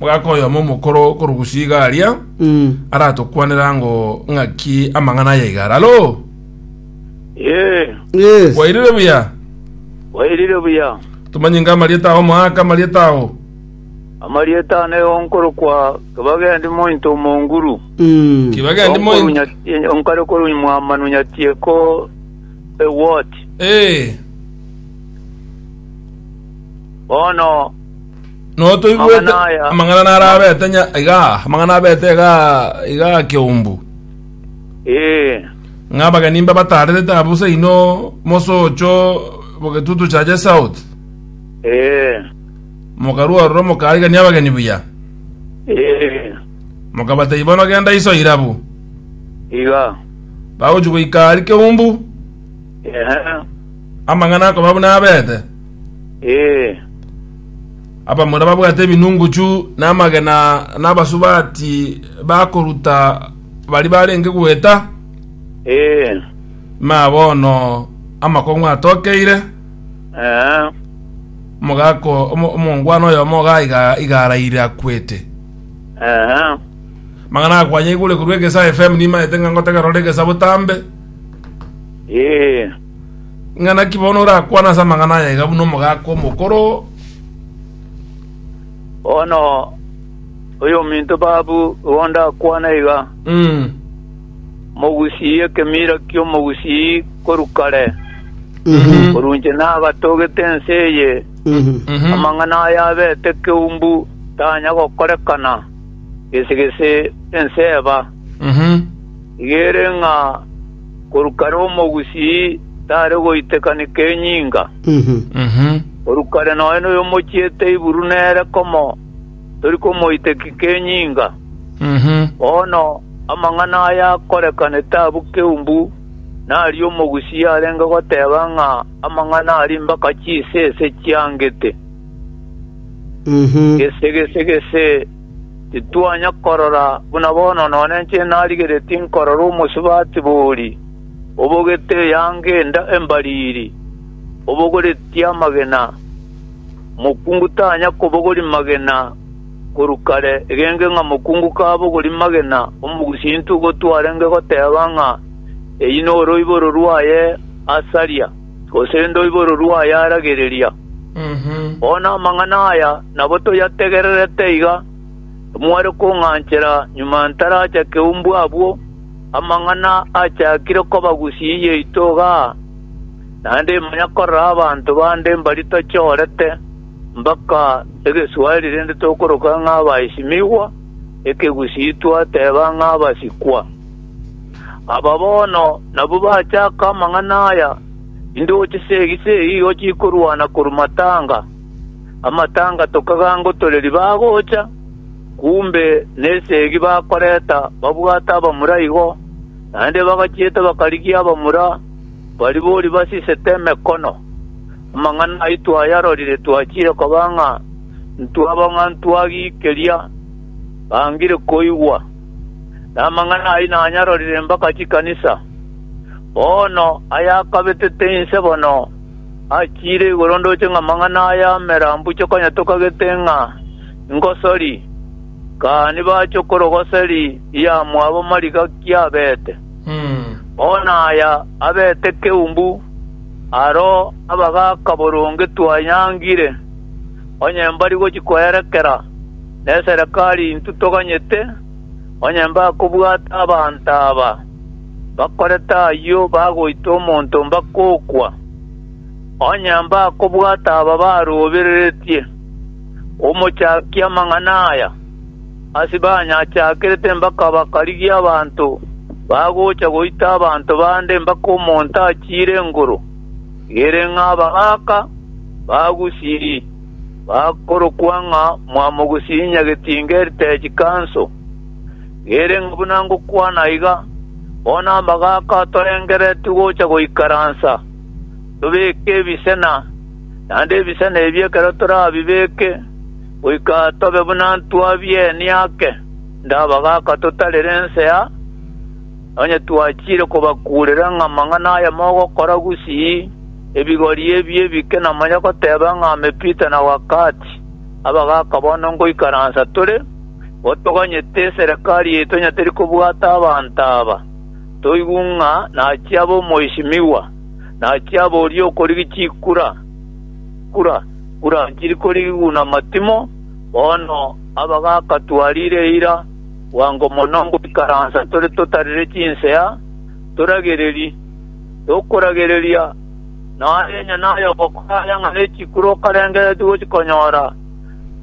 Mogaka oyomo omokoro korugusu iga aria aratokwanera ango ng'aki amang'ana aya iga are. Alo! Ee, Yes. Kwairire buya? kwairire buya. Tomanye inga amarieta ao moaka amarieta ao. Amarieta ane onkorokwa Kebagendi mointo omonguru. Mm. Kibagendi moi. Onkorunya- Onkare korunya mwamanu nyatieko ewoti. Eh. Bono No toigwete Amang'ana aya- amang'ana nara abete nya iga, amang'ana abete iga iga keumbu. ee Ng'a abageni mba batarerete abo seino mosocho bogetutu chaje south. ee Mokarua roro mokaigania abageni buya. ee Mokabatei bono genda iso irabu. iga Bagochi goika ari keumbu. ehe Amang'ana akoba buna abete. Ee. Abamura babwate ebinunguchu na amagena na abasubati bakoruta baria barenge goeta. Ee. Imaya bono amakong'u atokeire, Ee. omogaka o- omo- omongwana oyomo iga- iga- iga araire akwete. Ee. Amang'ana akwanyigure korwa Egesa FM nimaete ng'a ngotegerore Egesa botambe. Ee. Ng'a naki bono orakwane ase amang'ana aya iga buna omogaka omokoro? Bono oyominto babu igo ndakwane iga, Mm. Omogusii ekemira ki'omogusii korwa kare, Mhm. korwa inche nagatogete ense eye, Mhm. Mhm. amang'ana aya abete keumbu tanya gokorekana, gese gese ense eba. Mhm. Rigere ng'a korwa kare omogusii tare goitekaneka enyinga. Korwa kare nonya noyomochiete iburu nere komo tori komoitekika enyinga. Bono amang'ana aya akorekanete abwo keumbu, na aria omogusii arenge goteba ng'a amang'ana a rimbaka chisese chiangete, gese, gese, gese. Titwanya korora buna bono nonye inche narigeretie nkorora omosubati bori, obogete eyanga enda embariri, obogoretie amagena. Mokungu tanya kobogoria magena korwa kare, egenge ng'a mokungu kabogoria magena, omogusinto ogo twarenge goteba ng'a eyio noroiboro rwaye asaria. gose ndoibororwe ayaragereria. Bono amang'ana aya nabo toyategererete iga, timware kong'anchera nyuma ntarachake umbu abwo, amang'ana achakire kobagusia iyaito iga aa, naende imanya korora abanto bande mbari tochorete mpaka egeswari rende tokoroka ng'a abaesimigwa, ekegusii twateba ng'a abasikwa. Aba bono nabwo bachaka amang'ana aya, Indooche seegi-seegi igo chikorwana korwa matanga, amatanga tokagangotoreri bagocha, kumbe neseegi bakoreta babwate abamura igo, naende bagachiete bakarigia abamura baria boria basisete emekono. Amang'ana ayio twayarorire twachire koba ng'a ntwaba ng'a ntwagiikeria bangire koigwa. na amang'ana ayio nanyarorire mpaka chikanisa. Bono ayakabetete inse bono achiire igoro ndoche ng'a amang'ana aya amera mbuya konya tokagete ng'a ingosori, kani bachwe korogoseri y'amwabo marigaki abete. Bono aya abete keumbu aro abagaka boronge twanyangire, onye mbari gochia kwerekera. neserekari intwe toganyete, onye mbakobwata abanto aba bakorete ayio bagoita omonto mbakokwa. Onye mbakobwata aba barobereretie omochakia amang'ana aya, ase banyachakerete mbakaba karigia abanto bagocha goita abanto bande mpaka omonto achiire engoro, ere ng'a abagaaka bagusiri. bakorokwa ng'a mwamogosinyia getinga heritage council. Gere ng'a buna ngokwana iga, bono amagaaka atorengereretie gocha goikaransa, tobeke ebisena, naende ebisena ebio ekero torabibeke, goika tobe buna ntwabienie ake ndabagaaka totarire ensea, onye twachiire kobakuurera ng'a amang'ana aya mogokora gusii. Ebigori ebi ebike namanya goteba ng'a amepita na wakati, abagaaka bono ngoikaransa tore, igo toganyete eserekari yaito onye teri kobwata abanto aba. Toigw ng'a nachia abe omoisimigwa, nachia abe oria okorigi chikura, kura, kura nchiri korigi guna matimo, bono abagaaka twarire eira, bwango mono ngoikaransa tore totarire chinsea, toragereri. y'okoragereria, na enye nayogokora aya ng'a ne chikuro okarengereretie gochikonyora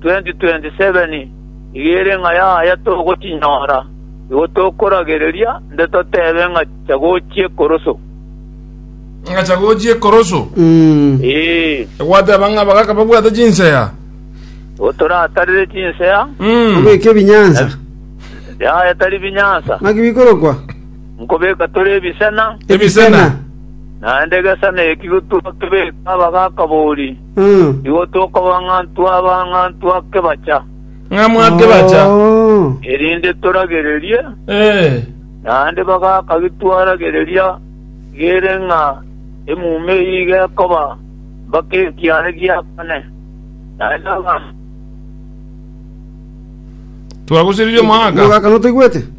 2027 nigo ere ng'a yaya togochinyora, igo tokoragereria nde totebe ng'a chagochia ekoroso. Ng'a chagochia ekoroso. Ee, Egwateba ng'a bagaka babwate chinsea. igo toratarire chinsea, Mm. Obeke ebinyansa. yaya tari binyansa. Naki bikorokwa? Nkobeka tore ebisena. Ebisena. Naende egesena ekio twakebeka abagakaboori, nigo tokoba ng'antu aba ng'antu akebacha. Ng'amu akebacha. Erinde toragererie. Naende bagakagi twaragereria gere ng'a emuma eyio iga ekoba mpaka ekiaare gia kane. Naende abanto. Twagusiririe omogaka. Omogaka, notoigwete?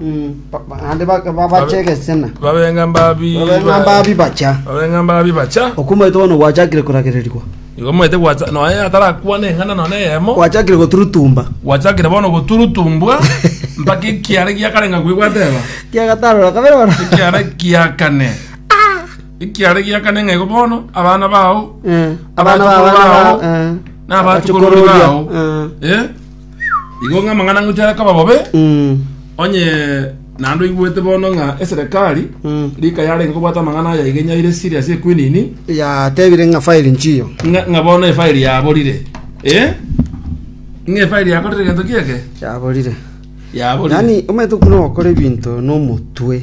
Mm, ba- ba- naende ba- babache egesena babenga mbabi babeng'a mbabi bacha babenga mbabi bacha okumaete bono gwachakire koragererigwa igo mwete gwacha noe atarakwana eng'ana none eyemo gwachakire goturutumba gwachakire bono goturutumbwa mpaka ekiara giakarenga kwe gwateba kiagatarora kabere bono ekiara giakane ekiara giakane ng'a igo bono abana bao Eh, abana Abachukuru ba- abana bao, bao, eh. n'abachukuru Abachukuru bao. eh. eh Igo ng'a amang'ana ngochia are koba bobe, Mm. onye naende oigwete bono ng'a eserekari Mm. rika yarenge kobwata amang'ana aya iga inyaire esiri ase ekwinini, yatebire ng'a fairi nchiyo ng'a ng'a bono efairi yaborire. Eh? Ng'a efairi yakorire egento ki eke? yaborire Yaborire. yaani omanyete okuna ogokora ebinto nomotwe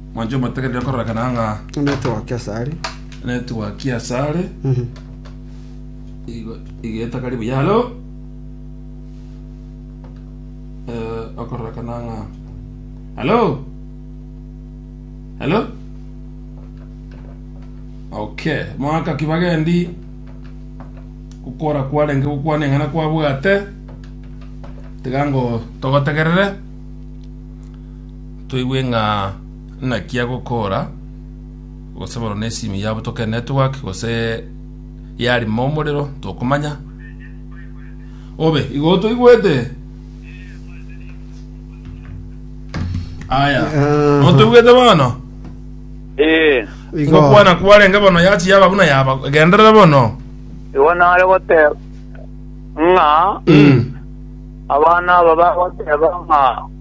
Mwanche omotegerere kororekana ng'a Netwa Kesari. netwa kiasare Mhm. igo igeta kari buya halo Eh, okororekana ng'a halo halo okay mwaka kibagendi gokora kwarenge gokwana eng'ana kwabwate tiga ngo togotegerere Toigwe ng'a naki agokoora, gose bono ne simu yabo toke network gose yarima omorero tokomanya. Obe igo toigwete. Aya. Ah. Otoigwete bono. Eh, Igo. Ngokwana kwarenge bono yachi yaba buna yaba. Genderera bono. igo nare goteba ng'a Mm. abana aba bagoteba ng'a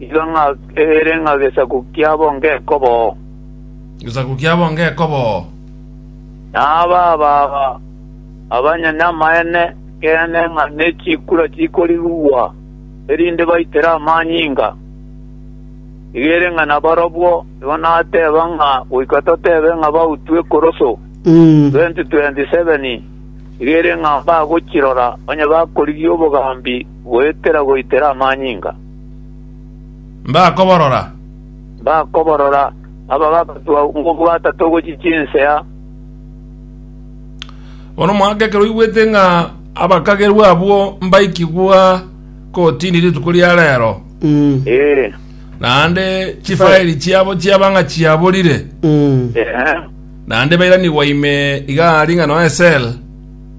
Iga ng'a ere ng'a gesaku kiabo ngekoboo. Gesaku kiabo ngekoboo. Na aba ababa abanye namaene ekeene ng'a ne chikura chikorigwa, erinde baitere amanyinga. Iga ere ng'a nabarobwo igo nateba ng'a goika totebe ng'a bautwe ekoroso, 20:27, iga ere ng'a mbagochirora onye bakorigia obogambi goetera goitera amanyinga. Mbakoborora. Mbakoborora, aba bagatwa ng'obwata togochia chinsea. Bono omwaka ekero oigwete ng'a abakagerwa abwo mbaikigwa kotini rituko ria reero, Ee, naende chifairi chiabo chiaba ng'a chiaborire, ehe, naende bairanigwa ime iga ring'a nonya esel,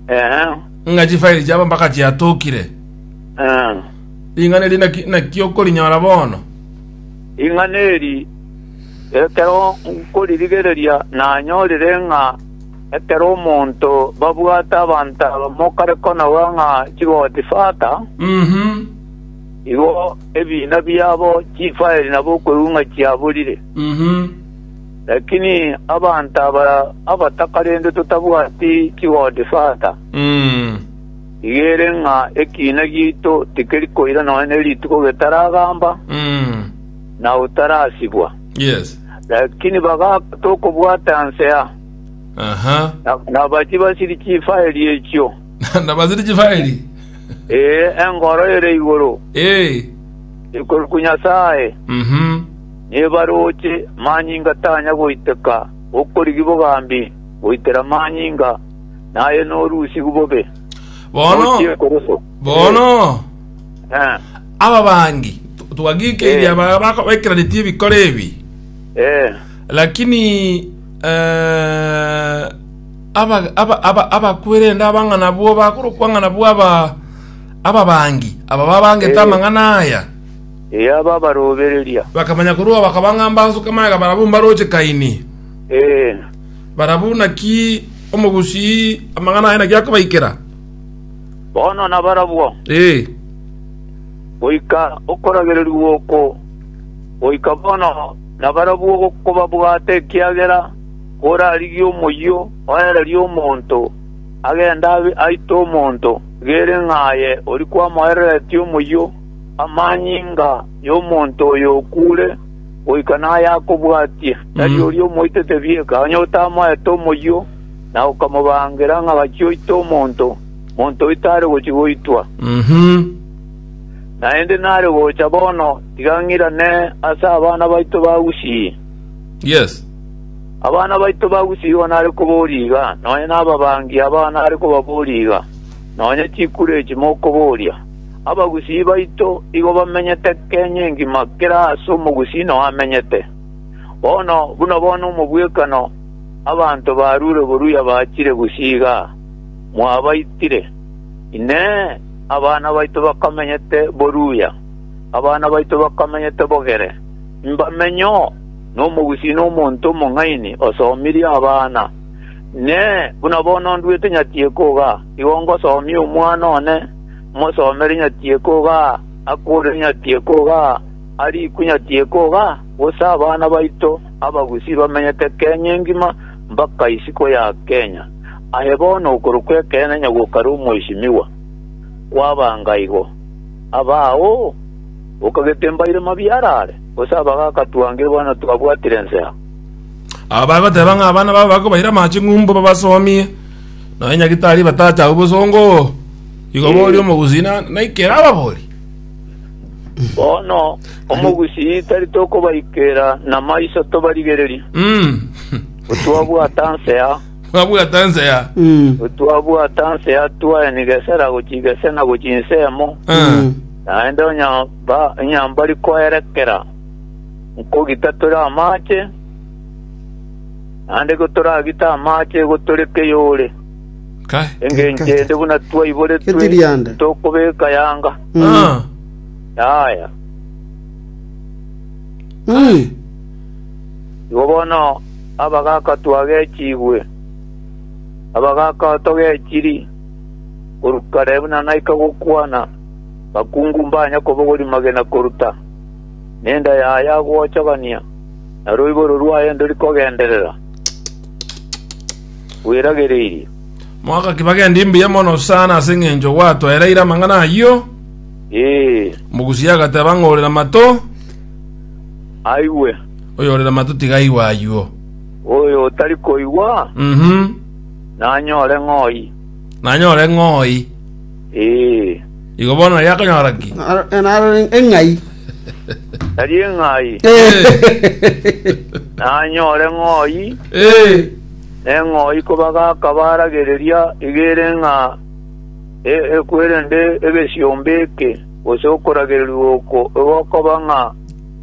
ehe, ng'a chifairi chiabo mpaka chiatokire. eh. Ring'ana eri naki naki okorinyora bono? Ring'ana eri, ekero nkoririgereria nanyorire ng'a ekero omonto babwate abanto abamo kare konaua ng'a chigoti fata, igo ebiina biabo chifaeli nabo okweung'a chiaborire. Lakini abanto aba abataka rende totabwati chigoti fata. Iga ere ng'a ekiina giaito tikeri koira nonya ne rituko getaragamba, na otarasibwa. Lakini bagaaka tokobwata nsea, na bachie basiri chifaeri echio, ee, engoro ere igoro ikoruku Nyasae, nebarooche manyinga tanya goiteka, bokorigi bogambi goitera manyinga. naye norusigu bobe Bono, nochie koruso bono, Eh, ababangi, tu- twagikeirie Eh. aba bako- baikeranetie ebikoro ebi, eh, lakini eh, aba- aba- aba- abakwerende abang'ana bwo bakorokwa ng'ana bwo aba ababangi aba babangete Eh. amang'ana aya eh, aba barobereria bakamanya korwa bakabanga mbansuka maega barabumba roche kaini Eh, Barabwo naki omogusii amang'ana aye naki akobaikera? Bono nabarabwo, Ee. goika okoragererigwa oko, goika bono nabarabwo gokobabwata ekiagera korarigie omoyio oereria omonto agende abe aite omonto, gere ng'a aye ori kwamoereretie omoyio amanyinga y'omonto oyo okuure. goika naye akobwatie, tari Mm. oria omoitete bieka, onye otamoete omoyio, na okamobangera ng'a gachia oite omonto, monto oito are gochia goitwa. Mhm. Naende nare gocha bono, tiga ng'irane ase abana baito ba Gusii. Yes. Abana baito ba Gusii igo nare koboria iga, nonya nababangi abao nare kobaboria iga, nonya chikure echi mokoboria. Abagusii baito igo bamenyete kenya engima kera aase omogusii nao amenyete. Bono buna bono omobwekano abanto barure boruya bachire gusii iga mwabaitire. Inee! Abana baito bakamenyete boruya? Abana baito bakamenyete bogere? Mbamenyo nomogusii na omonto omong'aini osomirie abana. Inee! Buna bono nduete nyatieko iga, igo ngosomia omwana one? Mosomere nyati ekoga, akure nyati ekoga, arikwe nyati ekoga, gose abana baito abagusii bamenyete Kenya engima mpaka isiko ya Kenya. Aye bono okorokwa ekeene onye gokare omwesimigwa, kwabanga igo. Abao okagete mbaire mabia arare, gose abagaka twangire bono twabwatire ensemo. Aba bagoteba ng'a abana babo bakobaira amache ng'umbu babasomie. Nonya nyagitari batacha abwo bosongo oo, igo Eh. boria omogusii naikera ababori. Bono omogusii tari tokobaikera namaiso tobarigererie, Mm. gotwabwata nsea, Mwabwata nsea. Mm. gotwabwata nsea twaeni gesera gochia gesena gochia nsemo, Ah. naende onya ba- onya mbari koerekera nkogita tore amache, Naende gotoragite amaache gotoreka eyore, engencho ende buna twaiboretwe titokobeka yanga. Yaya. Igo bono abagaaka twagechigwe, abagaaka togechiri, korwa kare buna naika gokwana, bakungu mbanya kobogori magena koruta, nenda yaya gochogania. na roiboro rwaye ndori kogenderera gweragereirie. Mwaka ki bagendi mbuya mono sana ase eng'encho gwatoereire amang'ana ayio. Ee, Omogusia agateba ng'a ore namato, aigwe. oyo ore namato tiga aigwe aywo. Oyo otari koigwa, Mhm. nanyore ng'oi. Nanyore ng'oi. Ee, Igo bono nari akonyora ki? Naro- naro eng'ai nari eng'ai nanyore ng'oi Eh, neng'oi kobaga akabaragereria igere ng'a e- ekwerende egesiombe eke gose okoragererwa oko igo okoba ng'a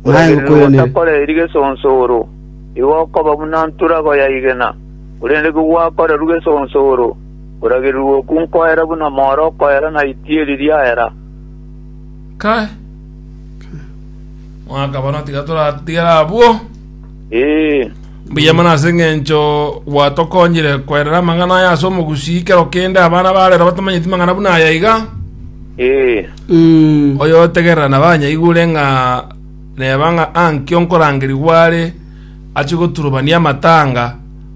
Naye kwenene. takoreri gesonsoro igo okoba buna nturago ya igena korende kigwakorerwa gesonsoro Koragererwa okwo nkoera buna more okoera na itieri riaera. Kai! Mwaka bono tiga toratigere abwo. Ee, Mbuya mono ase eng'encho gwatokonyire kwerera amang'ana aya ase omogusii kero kende abana barero batamanyeti mang'ana buna aya iga ee, Mm. oyo otegerera na banyaigure ng'a reba ng'a ankio nkorangerigwa are ache goturubania amatanga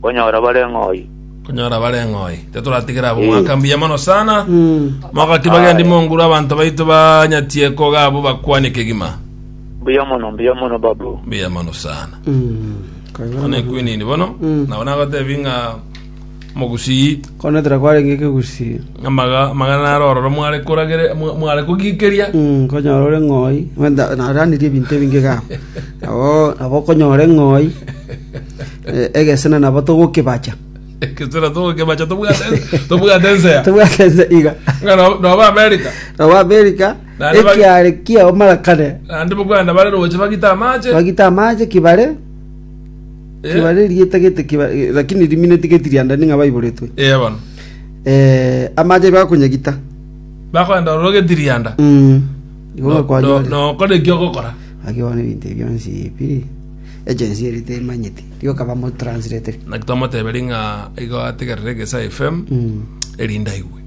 Konyora bare ng'oyi. konyora bare ng'oyi tetoratigera abo Eh. mwaka mbuya mono sana mogaki bagendi Aye. monguru abanto baito banyatie koga abo bakwane kegima Mbuya mono, mbuya mono babu. mbuya mono sana one kwinini bono Mm. nabo nagotebi ng'a mogusii konetera kwarenge ekegusii amaga amagana naro ororo mware koragere mwa- mware kogikeria Mm, konyora ore ng'oi naranirie ebinto ebinge ga nabo nabo konyora eng'oi Egesena nabo togokebacha. Ekesera togokebacha tobwate tobwate ensea. Tobwate ense iga. Ng'a no- noba America. Nabo Amerika Naende bagi- ekiare kiao mara kare. Naende bokwana bare roche bagite amache. Bagite amache kibare, Eh, kibare rieta gete kibare lakini rimineti geti riandani ng'a baiboretwe. Eh bono. Eh, amache bakonyagita. Bakoenda ororo getirianda. Mm. Igo No- no- bakwanyoria. Nokora eki ogokora. Agio ne binte bionsi pi. Agency eri temanyeti. Rioka bamotranslate. Naki twamoteberi ng'a igo ategerere Egesae FM erinde aigwe.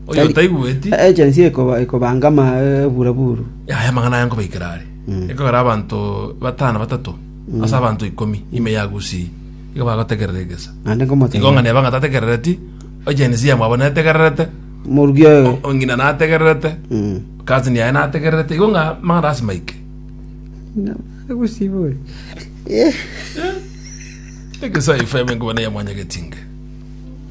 Oyo taigweti, Agency ekoba ekobanga ama eburaburu. yaya amang'ana aya nkobaikera are. Ekogera abanto batano batato ase abanto ikomi ime yagusii. Igo bagotegerera egesa. Naende Igo ng'a nkomotebia. neba ng'a tategerereti, Agency yamwabo netegererete, Morugi oyo. o- ng'ina nategererete, Mm. cousin yaye nategererete. Igo ng'a amang'ana ase maike. Ekesaifo y'abengoma neyamwanyagetie inge.